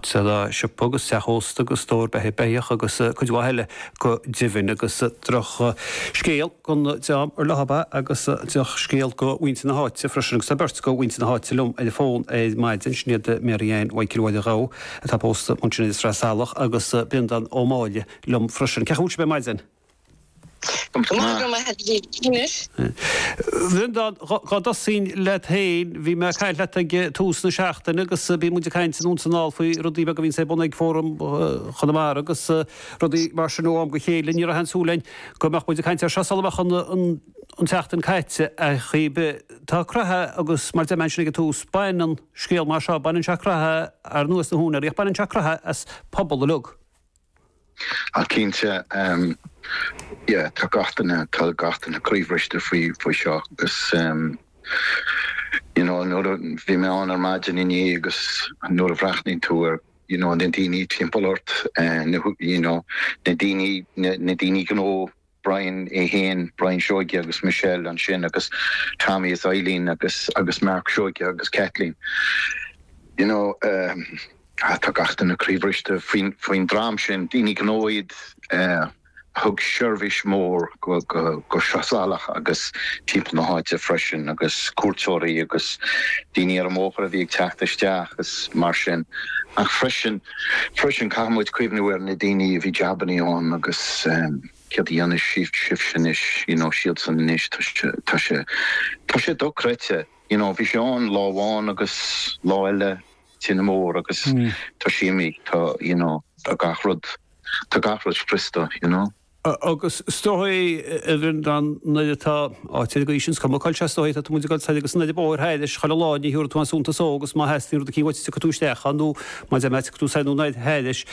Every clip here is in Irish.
Dódh siopa agus teach ósta agus stór beatha beithíoch agus cuid mhaith eile go deimhin agus droch scéal gan dabht ar bith agus drochscéal do mhuintir na háite freisin agus tá beirt de mhuintir na háite liom ar an bhfón ar maidin, Sinéad Mary Anne Mhichael Mháire Ghabha atá pósta ansin i Sraith Salach agus Breandán Ó Máille liom freisin. Cén chaoi a bhfuil sibh ar maidin? Bhreandáin, dhá dtosaínn leat féin, bhí mé ag caint leat ag tús na seachtaine agus bíonn muid ag caint anonn is anall faoi rudaí beaga a bhíonns ar bun ag Fóram Chonamara agus rudaí mar sin ó am go chéile. Ní raibh aon súil againn go mbeadh muid ag caint air seo sula mbeadh an tseachtain caite ach tá croitheadh agus mar a deir mé ansin ag an tús, baineann scéal mar seo, baineann sé croitheadh, ar ndóigh, as na húinéirí, ach baineann sé croitheadh as pobal uilig. Ach cinnte, yeah, tá gach duine, tá gach duine croíbhriste faoi, faoi seo agus ehm, you know, nuair a, bhí mé ann ar maidin inné agus nuair a bhreathnaíonn tú ar, you know, na daoine timpeall ort, eh, na, you know, na daoine, na, na daoine gnó, Brian é féin, Brian Seoige agus Michelle ansin agus Tommy is Eileen agus agus Mark Seoige agus Kathleen. You know eh tá gach duine croíbhriste faoin faoin dream sin, daoine gnó iad eh a thug seirbhís mhór go go go Sraith Salach agus timpeall na háite freisin agus cuairteoirí agus daoine ar an mbóthar a bhí ag teacht isteach is mar sin ach freisin Freisin, caithfimid cuimhniú ar na daoine a bhí jabannaí ann agus céard a dhéanfaidh sibhse anois, you know, siadsan anois, tá sé, tá sé, tá sé dochreidte, you know, bhí sé ann lá amháin agus lá eile tine mór agus tá sé imithe, tá, you know, tá gach rud, tá gach rud scriosta, you know. Agus is dóigh, a Bhreandáin, nuair atá áit ar an gcaoi sin, is cuma cáil, sea, is dóigh é, tá tú muid ag dul soir agus siar an bóthar thairis, chuile lá, ní thabharfaidh tú aon suntas dhó agus má theastaíonn rud eicínt uait gabhfaidh tú isteach ann nó mar a deir mé gabhfaidh tú soir nó anoir thairis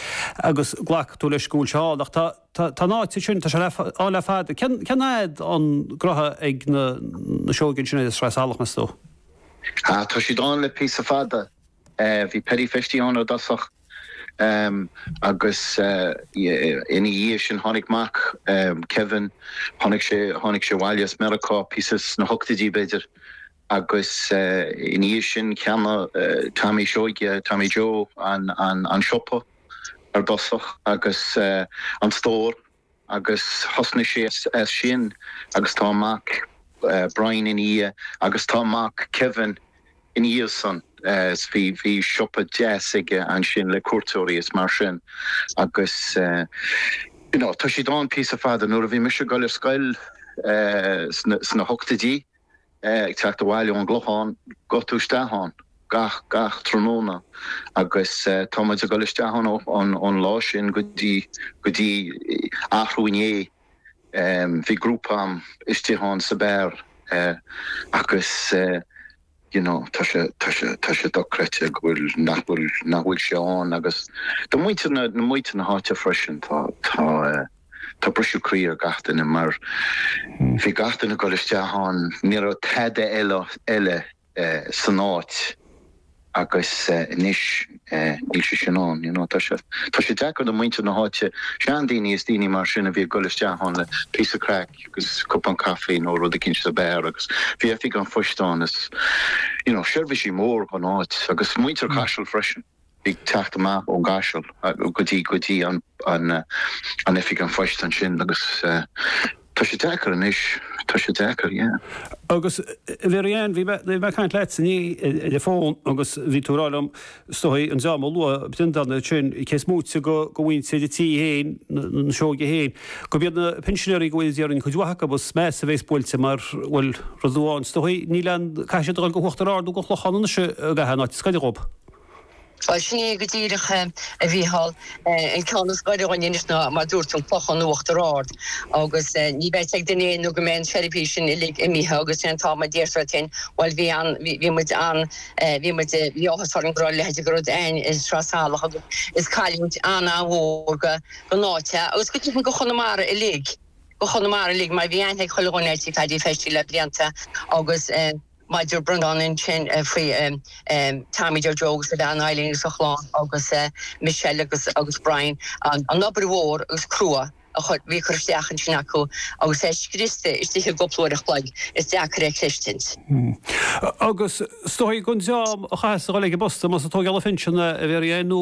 agus glacfaidh tú leis go bhfuil sé ann. Ach tá an áit sin, tá sé ann le fada. Cén fhad an gnotha ag na Seoigigh sin ar an Sraith Salach, meas tú? Tá siad ann le píosa fada. Bhí Paddy Festy ann i dtosach agus ina dhiaidh sin tháinig mac Kevin, tháinig sé abhaile as Meiriceá, píosa sna hochtaidí b'fhéidir, agus ina dhiaidh sin cheannaigh Tommy Seoige, Tommy Joe, an siopa ar dtosach agus an stór. agus thosnaigh sé as sin agus tá a mhac Brian ina dhiaidh agus tá a mhac Kevin ina dhiaidh sin is bhí bhí siopa deas aige ansin le cuairteoirí is mar sin agus you know tá siad ann píosa fada nuair a bhí mise ag goil ar scoil sna hochtaidí. ag teacht abhaile ón gClochán gabhfaidh tú isteach ann gach, gach tráthnóna agus tá muid ag dul isteach ann ón lá sin go dtí, go dtí arú inné, bhí grúpa a'm istigh ann sa beár agus you know tá sé, tá sé, tá sé dochreidte go bhfuil, nach bhfuil, nach bhfuil sé ann agus do mhuintir na, do mhuintir na háite freisin tá, tá. Tá briseadh croí ar gach duine mar bhí gach duine ag dul isteach ann, ní raibh tada eile san áit agus anois níl sé sin ann, you know. Tá sé, tá sé deacair do mhuintir na háite, seandaoine is daoine mar sin a bhí ag dul isteach ann le píosa craic agus cupán caife nó rud eicínt sa beár agus bhí oifig an phoist ann is, you know, seirbhísí mór gon áit agus muintir Chaisil freisin. ag teacht amach ón gCaiseal go dtí go dtí an oifig an phoist ansin agus tá sé deacair anois, tá sé deacair, yeah. Agus Mhary-Ann, bhí mé ag caint leat inné ar an bhfón agus bhí tú ag rá liom is dóichí an dream a luaigh b'in an domhan ansin cé is móite go mhuintir an tí féin, na Seoige féin, gurb iad na pinsinéirí go háirid déarfainn cuid mhaith acu agus is measa a bhéas buailte mar, bhuel, rud amháin is dóichí níl an caithfidh siad a dhul go Uachtar Ard nó go Clochán anois i gcaitheamh an áit, is gaire dhób. Ba shin é go díreach, a Mhícheál, an ceann is gaire dhúinn anois ná, mar dúirt tú, an Clochán, Uachtar Ard. Agus ní bheidh ag duine aon nó go mbeidh an seirbhís sin uilig imithe agus sin an t-am a déarfar duinn, bhuel bhí an, bhí muid an, bhí muid, bhí áthas orainn go raibh a leithide go rud a'inn i Sraith Salach agus is cailliúint an-an-mhór go, gon áit é, agus go deimhin go Chonamara uilig, go Chonamara uilig mar bhí aithne ag chuile dhuine ar tí Phaddy Feistí le blianta agus. Mar a dúirt Brendan ansin faoi Tommy Deir Joe agus a bhean Eileen agus a chlann agus Michelle agus agus Brian an obair mhór agus crua a bhí curtha isteach ansin acu agus é scriosta istigh i gcúpla uair an chloig is deacair é chluistint. Agus is dóichí gon dream a chaitheas a dhul ag an bposta más ag tógáil an phinsean a bhí ar a dheoin nó